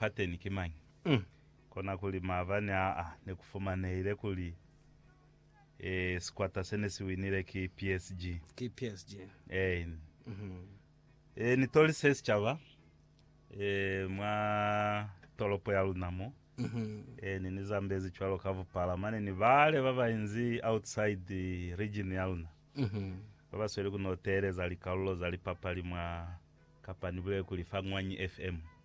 pateni ki mañi? Kona kuli maabani aa ne ku fumanehile kuli sikwata se ne si winile ki PSG. Ki PSG. Eeni. Ee, ni tolise sicaba mwa tolopo ya luna mo. Eeni, ni zambezi cwalo ka bupala mane ni bale ba ba inzi outside region ya luna, ba ba sweli ku no teeleza likalulo za lipapali mwa, kapa ni bulele kuli fa Ngwanyi FM.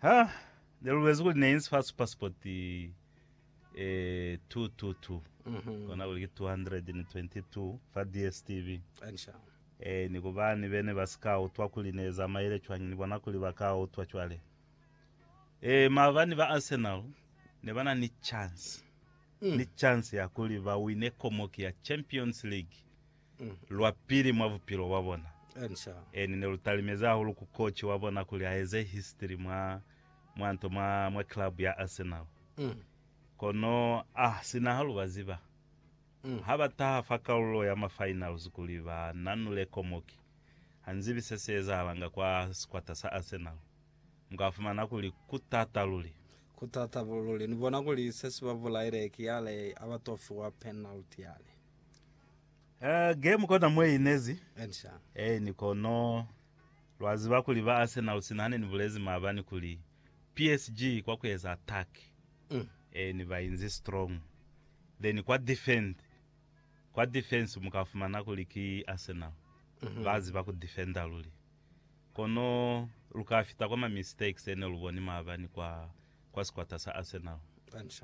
Ha ne lubezi kuli ne inzi fa super sport eh 222 kona kuli ki 222 fa DSTV Ansha. eh ni kubani bene ba si ka utwa kuli ne zamaile cwañi ni bona kuli ba ka utwa cwale eh maabani ba Arsenal ne ba na ni chance ni chance ya kuli ba wine komoki ya Champions League lwa pili mwa bupilo bwa bona, eni ne lu talimezi hahulu ku koci wa bona kuli a eze history mwa, mwa nto, mwa, mwa club ya Arsenal. Kono a sina ha lu ba ziba, ha ba taha fa kalulo ya ma finals kuli ba nanule komoki, ha nzibi se si ezahalanga kwa sikwata sa Arsenal. Mu ka fumana kuli ku t'ata luli. Ku t'ata luli. Ni bona kuli se si ba bulaile ki yale ha ba t'o fiwa penalty yale. Eh, game kona mwe inezi. Ensha. Eh, ni kono lwa ziba kuli ba Arsenal sina hane ni bulezi maabani kuli PSG kwa kueza attack. Mm. Eh, ni ba inzi strong. Then kwa defend. Kwa defense muka fumana kuli ki Arsenal. Mm -hmm. Ba ziba ku defender luli. Kono luka fita kwa ma mistakes ene luboni maabani kwa kwa sikwata sa Arsenal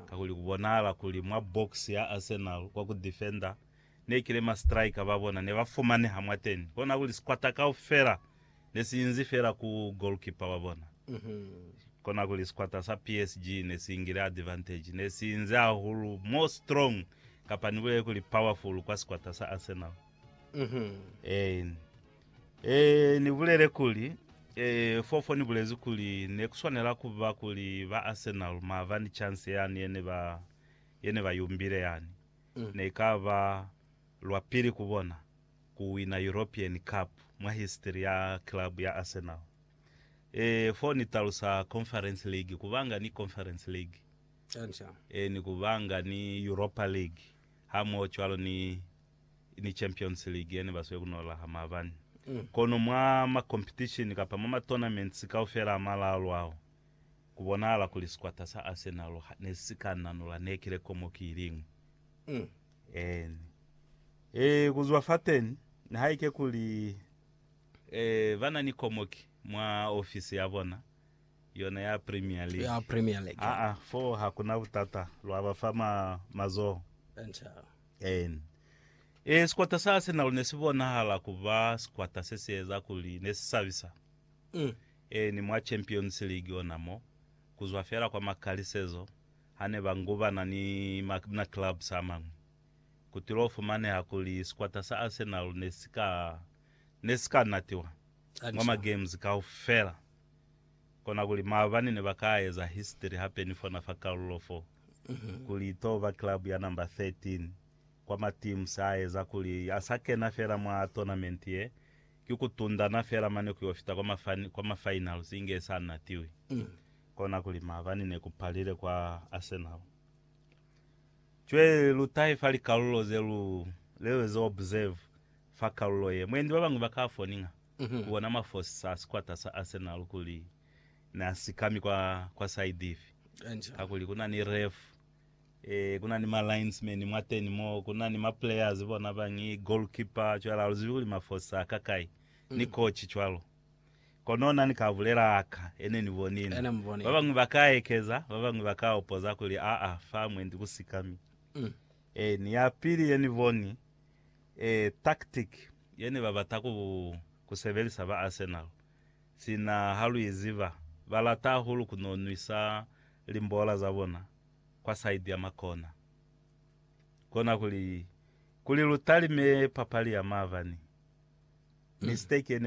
kakuli kubonahala kuli mwa box ya Arsenal kwa ku defender nekile ma striker babona nebafumaneha mwateni kona kuli sikwata kaufela nesiinzi feela ku goalkeeper wabona. Kona kuli sikwata sa PSG nesiingile advantage nesiinzi hahulu more strong kapa nibulele kuli powerful kwa sikwata sa Arsenal. Eeni. Ee, ni bulele kuli, Ee, fofo ni bulezi kuli ne ku swanela ku ba kuli ba Arsenal mava ni chance yani ye ne ba, ye ne ba yumbile yani, ne ka ba lwa pili ku bona ku wina European Cup mwa history ya club ya Arsenal. Ee, fo ni talusa Conference League, ku banga ni Conference League, Ee, ni ku banga ni Europa League, hamoho cwalo ni. ni Champions League yene basweli kunola ha maabani. Kono mwa makompitishini kapa mwa matonaments kaufela a malalu ao, kubonahala kuli sikwata sa Arsenal nesika nanola nekile komo ki iliñwi. Eeni. Ee, kuzwa fateni, nihaike kuli ee, banani komo ki mwa ofisi yabona, yona ya Premier League. Ya Premier League. Aa, foo hakuna butata, lwabafa ma, mazoho. Enca. Ee. Ee, sikwata sa Arsenal ne si bonahala ku ba sikwata se si eza kuli ne si sabisa. Ee, ni mwa Champions League ona mo, ku zwa fela kwa makalisezo ha ne ba ngubana ni ma clubs a mañwi, ku tilo fumaneha kuli sikwata sa Arsenal ne si ka, ne si ka natiwa mwa ma games kaufela. Kona kuli maabani ne ba ka eza history hape ni fona fa kalulo fo, kuli i to ba club ya number 13 kwa ma teams a eza kuli a sa kena fela mwa tournament ye, ki ku tundana fela mane ku yo fita kwa mafani, kwa ma finals inge i sa natiwi. Kona kuli maabani ne ku palile kwa Arsenal. Cwe lu tahe fa likalulo ze lu, le lu eze observe fa kalulo ye. Mwendi ba bañwi ba ka foninga. Ku bona mafosi sa sikwata sa Arsenal kuli na si kami kwa, kwa side ifi. Kakuli ku na ni ref, e, ku na ni ma linesman mwateni mo, ku na ni ma players bona bañi, goalkeeper, cwale ha lu zibi kuli mafosi a ka kai, ni coach cwalo. Kono na ni ka bulela aka e ne ni bonile. Ba bañwi ba ka ekeza, ba bañwi ba ka opoza kuli, aa, fa mwendi ku si kami. E, ni ya pili ye ni boni, Ee, tactic ye ne ba bata ku, ku sebelisa ba Arsenal, sina ha lu i ziba, ba lata hahulu ku n'o nwisa limbola za bona kwa side ya makona. Kona kuli, kuli lu talime papali ya maabani, mistake ye ne ba.